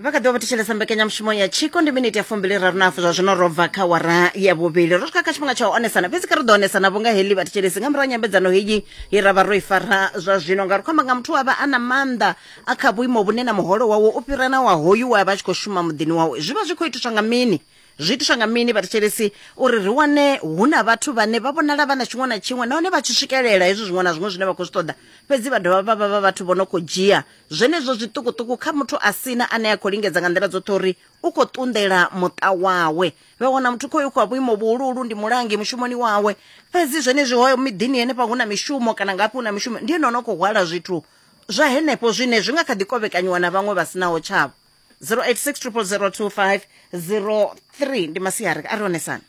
vha kha ḓi vha vha thetshelesa mbekanyamushumo ya tshiko ndi miniti ya fumbili raru na hafu zwa zwino ro bva kha wara ya vhuvhili ro swika kha tshifhinga tsha u onesana fhedzi kha ri ḓo onesana vhunga heḽi vhathetshelesi nga murahu ha nyambedzano heyi ye ra vha ro i fara zwa zwino ngauri khou amba nga muthu wa vha a na maanḓa a kha vhuimo vhune na muholo wawe u fhira na wa hoyu we a vha a tshi khou shuma muḓini wawe zwi vha zwi khou itiswa nga mini zwi itiswa nga mini vhathetshelesi uri ri wane hu na vhathu vhane vha vhonala vha na tshiṅwe na tshiṅwe nahone vha tshi swikelela hezwi zwiṅwe na zwiṅwe zwine vha khou zwi ṱoḓa fhedzi vha dovha vha vha vha vhathu vho no khou dzhia Zwenezwo zwiṱukuṱuku kha muthu a sina ane a khou lingedza nga nḓila dzoṱhe uri u khou ṱunḓela muṱa wawe. Vha wana muthu khoyo khou vhuimo vhuhuluhulu ndi mulangi mushumoni wawe. Fhedzi zwenezwi hoyo miḓini henefha hu na mishumo kana ngafhi hu na mishumo ndi ene ono khou hwala zwithu zwa henefho zwine zwi nga kha ḓi kovhekanyiwa na vhaṅwe vha sinaho tshavho. 0860002503 ndi masiari a ri hone sana.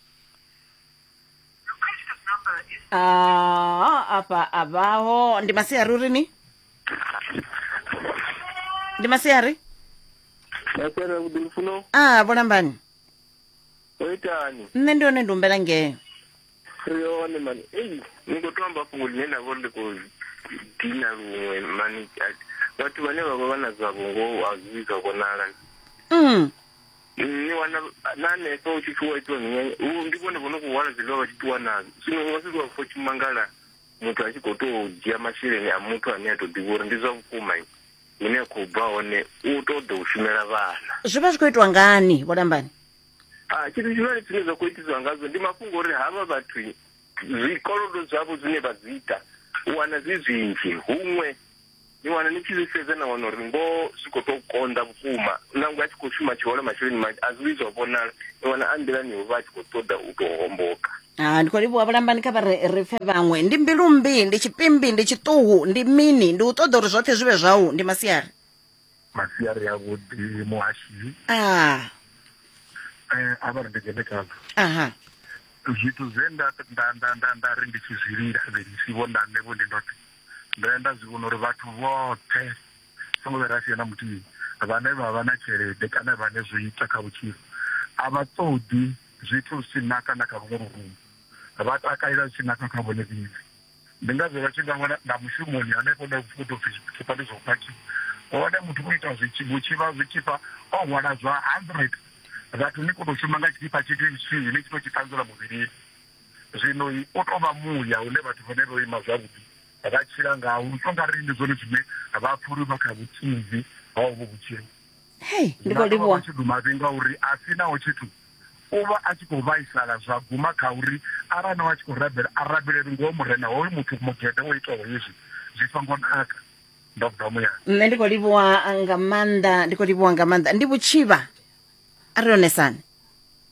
Ah, afha a vhaho ndi masiari uri ni ndi masiari masere vhuḓi lufuno a vholambani o itani nṋe ndi hone ndi humbela ngeo ri hone mani ei ni khou to amba fhungo ḽine nda vha uri ndi khou dina luṅwe mani a- vhathu vhane vha vha vha na dzavho ngoho a zwi vhi zwa vhonala mm. ni wana na hanefha u tshi pfi wa itiwa minyanya u- ndi vhone vho no khou hwala zwiḽiwa vha tshi ṱuwa nazwo zwino u nga si zwa fo tshimangala muthu a tshi khou tou dzhia masheleni a muthu ane a tou ḓivha uri ndi zwa vhukuma hune a khou bva hone u tou ḓo u shumela vhana zwi vha zwi khou itwa ngani vholambani a ah, tshithu tshihulwane tshine zwa khou itiswa ngazwo ndi mafhungo uri havha vhathu zwikolodo zwavho zwine vha zwi ita u wana zwi zwinzhi huṅwe ni wana ni tshi zwi sedza na wana uri ngoho zwi khou tou konḓa vhukuma nangwe a tshi khou shuma tshihole masheleni manzhi a zwi vhi zwa vhonala ni wana a nḓilani u vha a tshi khou ṱoḓa u tou homboka Ah, ndi khou livhuwa vhulambani kha vha re ri pfe vhaṅwe ndi mbilumbi ndi tshipimbi ndi tshiṱuhu ndi mini ndi u ṱoḓa uri zwoṱhe zwi vhe zwau ndi masiari masiari avhuḓi muhashi ah. eh, a vha ri ndi dzhene khazwo aha zwithu zwe nda nda nda nda nda ri ndi tshi zwi lila vhelisi vho nda nṋe vho ndi ndoṱhe ndo ya nda zwi vhona uri vhathu vhoṱhe songo vhe ra sia na muthihi vhane vha vha na tshelede kana vhane zwo ita kha vhutshilo a vha ṱoḓi zwithu zwi tshi naka na kha vhuṅwe vhurungu vha takalela zwi tshi naka kha vhone vhili Ndi ngazwo vha tshi nga wana na mushumoni hanefho hune hu tou pfi tshipha ndi zwa u phakhiwa hone muthu vho ita zwitshibo tshivha zwitshipha o hwala zwa hundred vhathu ni khou tou shuma nga tshipha tshithu tshithihi ni tshi tou tshi ṱanzela muvhilini zwino u tou vha muya hune vhathu vhane vho ima zwavhuḓi vha tshila ngaho u tou nga ri ndi zwone zwine vha pfha uri vha kha vhutsinzi ha ovho vhutshilo hei ndi khou livhuwa tshidumavhi ngauri a si naho tshithu u vha a tshi khou vhaisala zwa guma kha uri arali no vha tshi khou rabela a rabeleli ngoho murena hoyu muthu mugede o itaho hezwi zwi songo naka ndo bva muyani nṋe ndi khou livhuwa nga maanḓa ndi khou livhuwa nga maanḓa ndi vhutshivha a ri onesani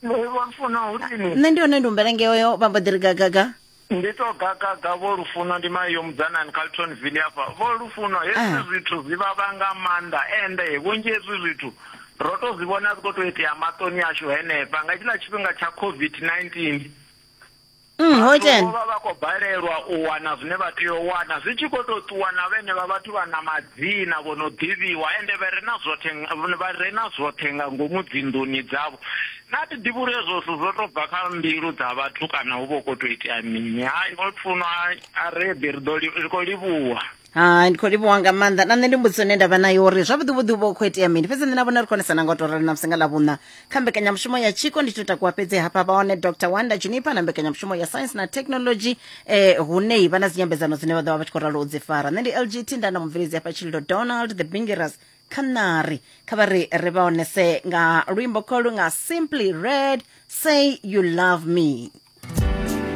Ndo vha funa uri ni nṋe ndi hone ndi humbela ngeoyo vha mbo ḓi ri gagaga Ndi to gagaga vho Lufuno ndi mai yo mudzanani kha Lutonville hafha. Vho Lufuno hezwi ah. zwithu zwi vhavha nga maanḓa ende vhunzhi hezwi zwithu ro to zwi vhona zwi khou tou itea maṱoni ashu henefha nga tshiḽa tshifhinga tsha COVID-19. Mm, ho dzhena. Vho vha vha khou balelwa u wana zwine vha tea u wana zwi tshi khou tou ṱuwa na vhene vha vhathu vha na madzina vho no ḓivhiwa ende vha re na zwoṱhe vha re na zwoṱhe nga ngomu dzinḓuni dzavho Naa thi ḓivhi uri hezwo zwithu zwo tou bva kha mbilu dza vhathu kana hu vha hu khou tou itea mini? Hai, o funwa a ri eḓi ri ḓo li- ri khou livhuwa. hai ndi khou livhuwa nga maanḓa na nṋe ndi mbudziso ine ndavha nayo uri zwavhuḓi vhuḓi u vha u khou itea mini fhedzi nṋe na vhona ri khonesa na nga u tou rali na musi nga ḽa vhuṋa kha mbekanyamushumo ya tshiko ndi to takuwa fhedzi hafha vha hone dr wanda junipa na mbekanyamushumo ya science na technology eh hune vha na dzinyambedzano dzine vha ḓo vha vha tshi khou ralo u dzi fara nṋe ndi lgt nda na mubveledzi hafha tshililo donald the bingeras canary kha vha ri ri vha onese nga luimbo kholu nga simply red say you love me